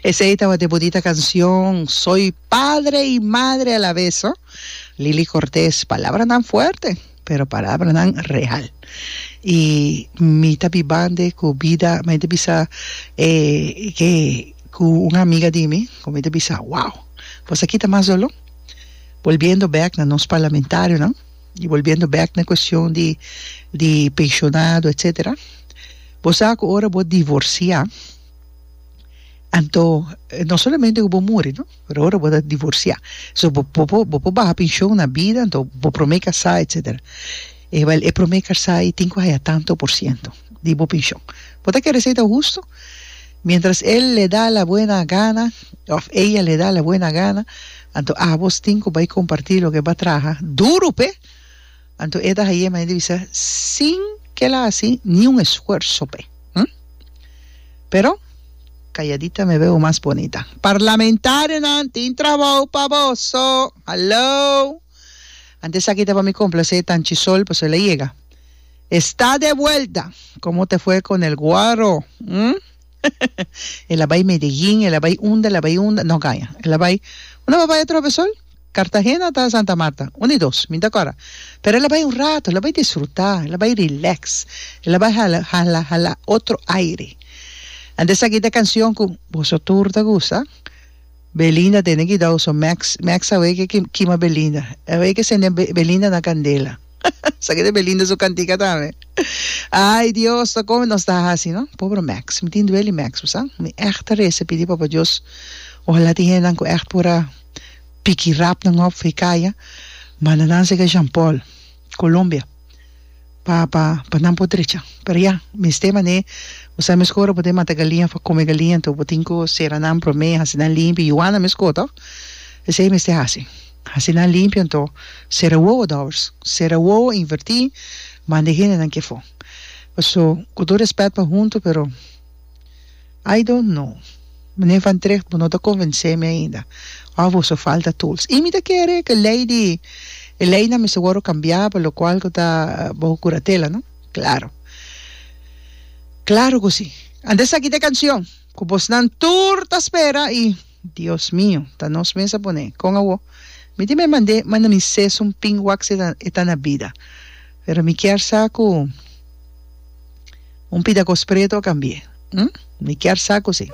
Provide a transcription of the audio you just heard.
Esey tabata e bonita cancion Soy padre y madre a la vez ho. Lily Cortés palabranan fuerte pero palabranan real y mi ta bibande cu bida mey ta bisa e ke cu un amiga di mi cu mey ta bisa wow pues aki ta mas dolor volviendo back na nos parlamentarionan. Y volviendo back na cuestion di di pensionado etcetera bo sa cu ora bo divorcia anto no solamente cu bo muri no pero ora bo ta divorcia so bo bo por bo por baha pension na bida anto bo prome casa etcetera ewel e prome casa y tin cu haya tanto por ciento di bo penshon. Bo ta kere seta hustu? Miéntras el le da la buena gana òf eya le da la buena gana, anto ábos tin ku bai kompartí loke bo a traha duru p'e. Anto e ta hañ'é manera di bisa sin ku el a hasi ni un esfuerso p'e. Hm? Pero, kayadita me beu mas bonita. Parlamentarionan tin trabou pa boso! Halou! Ante esaki ta pa mi complacé Tanchi Sol, paso el a yega. Está de vuelta! Como te fue con el guaro? Hm? El a bai Medellín, el a bai unda, el a bai unda, no gaña. El a bai, unda bo a bai atrobe, Sol? Cartagena ta Santa Marta, un i dos, mi ta cora. Pero el a bai un rato, el a bai disfrutá, el a bai relax, el a bai hala, hala, hala otro aire. Ante esaki ta cancion cu boso tur ta gusta. Belinda tene ki dau so Max Max awei ke kima Belinda awei ke sende Belinda na candela sa keda Belinda su cantica tambe ay Dios ta come nos ta haci no pobre Max mi tin dueli Max bo sa mi echt ta reza pidi Papa Dios ohala tin hendenan cu echt por a piki rap nan hof for e caya manda nan seca Jean Paul. Colombia pa pa pa nan por drecha pero ya mester manera bo sa mes ku ora bo tin mata galinha for come galinha enton bo tin ku sera nan prome hasi nan limpio y wana mes ku to esei mester hasi hasi nan limpio enton sera wowo dòbbers sera wowo inverti manda e hendenan ke for paso ku tur respet pa huntu pero. I don't know Meneer Van Tricht bo no ta convence mi ainda of boso falta tools y mi ta kere cu ley di e leynan mester wordo cambia pa lo cual cu ta boso curatela no claro claro cu si anto esaki ta e cancion cu bosnan tur ta spera y Dios mio, ta nos mes a pone. Con awo? Mi tin me mande manda mi ses un pin wax e ta e ta na bida. Pero mi kier sa cu un pida cos preto a cambie. Hm? Mi kier sa cu si.